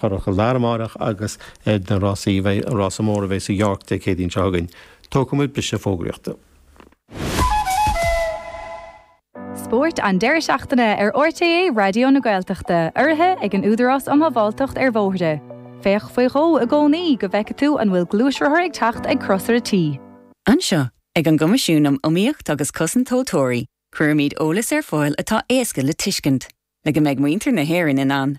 Currach ar clár amárach agus ar na rásaí bheidh an rása mór a bheidh sa York Dé Céadaoin seo chugainn. Tógfaimid briseadh fógraíochta. Spórt an deireadh seachtaine ar RTÉ Raidió na Gaeltachta, urraithe ag an Údarás um Shábháilteacht ar Bhóithre. Féach faoi dhó i gcónaí go bhfeicfidh tú an bhfuil gluaisrothar ag teacht ag crosaire T. Anseo, ag an gCoimisiún um Iomaíocht agus Cosaint Tomhaltóirí, cuirimid eolas ar fáil atá éasca le tuiscint, le go mbeidh muintir na hÉireann in ann.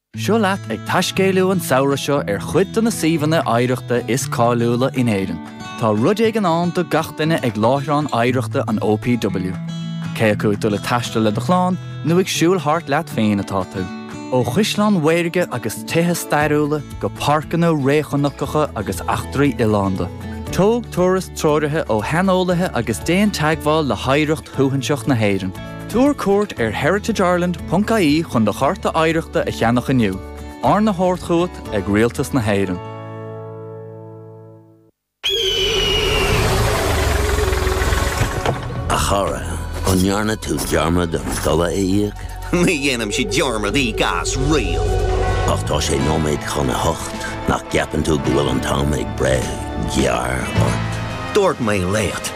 Seo leat ag taiscéaliú an samhradh seo ar chuid de na suíomhanna oidhreachta is cáiliúla in Éirinn. Tá rud éigin ann do gach duine ag láithreán oidhreachta an OPW. Cé acu ag dul ag taisteal le do chlann nó ag siúl thart leat féin atá tú. Ó chaisleáin mhaorga agus tithe stairiúla go páirceanna réchnocacha agus eachtraí oileánda, tóg turas treoraithe ó shaineolaithe agus déan teagmháil le hoidhreacht shuaithinseach na hÉireann. Tabhair cuairt ar heritageireland.ie chun do Chárta Oidhreachta a cheannach inniu, arna thabhairt chugat ag Rialtas na hÉireann. A chara, an ndearna tú dearmad an dola a íoc? Ní dhéanann siad dearmad íoc as riamh! Ach tá sé nóiméad chun a hocht, nach gceapann tú go bhfuil an t-am ag breith gearr ort? Dúirt mé leat!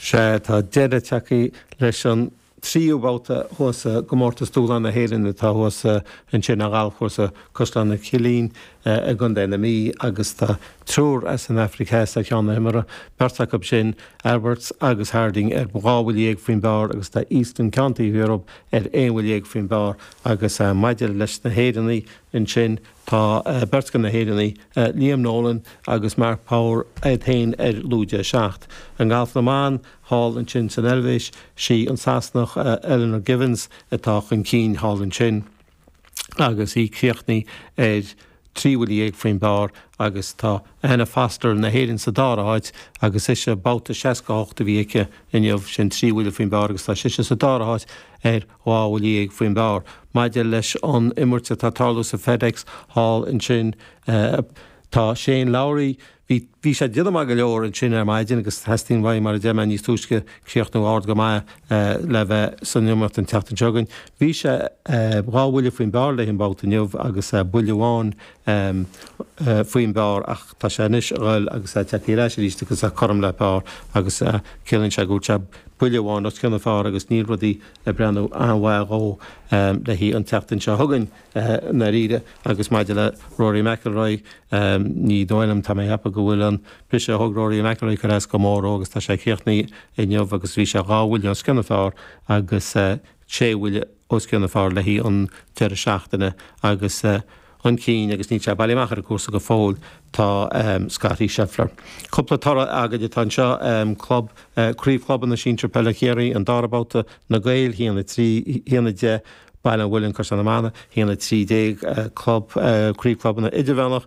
Sea, tá deireadh tagtha leis an tríú babhta thuas sa gComórtas Dúshláin na hÉireann atá thuas ansin ar ghalfchúrsa Caisleán an Chillín i gContae na Mí agus tá triúr as an Afraic Theas ar cheann na himeartha, beirt acu sin, Alberts agus Harding ar dhá bhuille dhéag faoin bpar agus tá Estanislao Goya ar aon bhuille dhéag faoin bpar agus maidir leis na hÉireannaigh ansin, Tá beirt de na hÉireannaigh, Liam Nolan agus Mark Power, iad féin ar lúide a seacht. I ngalf na mban, thall ansin san Eilvéis, sí an Sasanach Eleanor Givens atá chun cinn thall ansin agus í críochnaithe ar trí bhuille dhéag faoin bpar agus tá Anna Foster na hÉireann sa dara háit agus ise, babhta 68 a bhí aici inniu, sin trí bhuille faoin bpar agus tá sise sa dara háit ar Dhá bhuille dhéag faoin bpar maidir leis an imirt atá tarlú sa FedEx thall ansin. Tá Shane Lowry, bhí bhí sé déanamh maith go leor ansin ar maidin agus teastaíonn uaidh mar a deir mé níos túisce críochnú ard go maith le bheith san imirt an tseachtain seo chugainn. Bhí sé dhá bhuille faoin bpar le haghaidh an babhta inniu agus buille amháin ehm. eh. faoin bpar ach tá sé anois a dhul agus a' teacht ar ais aríst agus a' cothrom le par agus eh. ciallaíonn sé go bhfuil sé buille amháin os cionn an phar agus níl rudaí ag breathnú an-mhaith dhó ehm. le haghaidh an tseachtain seo chugainn eh. i ndáiríre agus maidir le Rory McIlroy ehm. ní dóigh liom tá mé a' cheapadh go bhfuil an briseadh a thug Rory McIlroy ag cur as go mór dhó agus tá sé críochnaithe inniu agus bhí sé dhá bhuille os cionn an phar agus eh. sé bhuille os cionn an phar le haghaidh an deireadh seachtaine agus chun cinn agus níl sé bailithe amach ar an gcúrsa go fóill tá Scottie Scheffler. Cúpla toradh againn atá anseo, club, craobh chlubanna sinsir peile Chiarraí, an dara babhta, Na Gaeil, 1, 10, Baile an Mhuilinn, Caisleán na Mainge, 1, 13, club, craobh clubanna idirmheánach,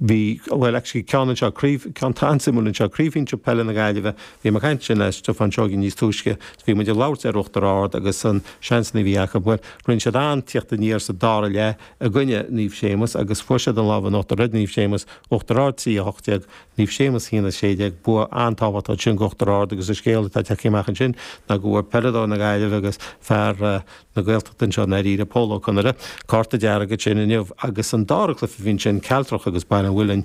Bhí, bhuel, actually ceann anseo, craobh, ceann an-suimiúil anseo, Craobh Sinsir Peile na Gaillimhe, bhí mé ag caint ansin le Stiofán Seoighe níos túisce is bhí muid ag labhairt ar Uachtar Ard agus na seansanna a bhí acu. Bhuel, rinne siad an-tíocht aniar sa dara leath i gcoinne Naomh Séamus agus fuair siad an lámh in uachtar ar Naomh Séamus, Uachtar Ard 3, 18, Naomh Séamus 1, 16. Bua an-tábhachtach ansin d'Uachtar Ard agus an scéal atá ag teacht amach ansin ná go bhfuair peileadóir na Gaillimhe agus fear na. na Gaeltachta anseo i ndáiríre, Pól Ó Conaire, cárta dearg ansin inniu agus an dara cluiche bhí ansin, Cealtrach agus Baile an Mhuilinn.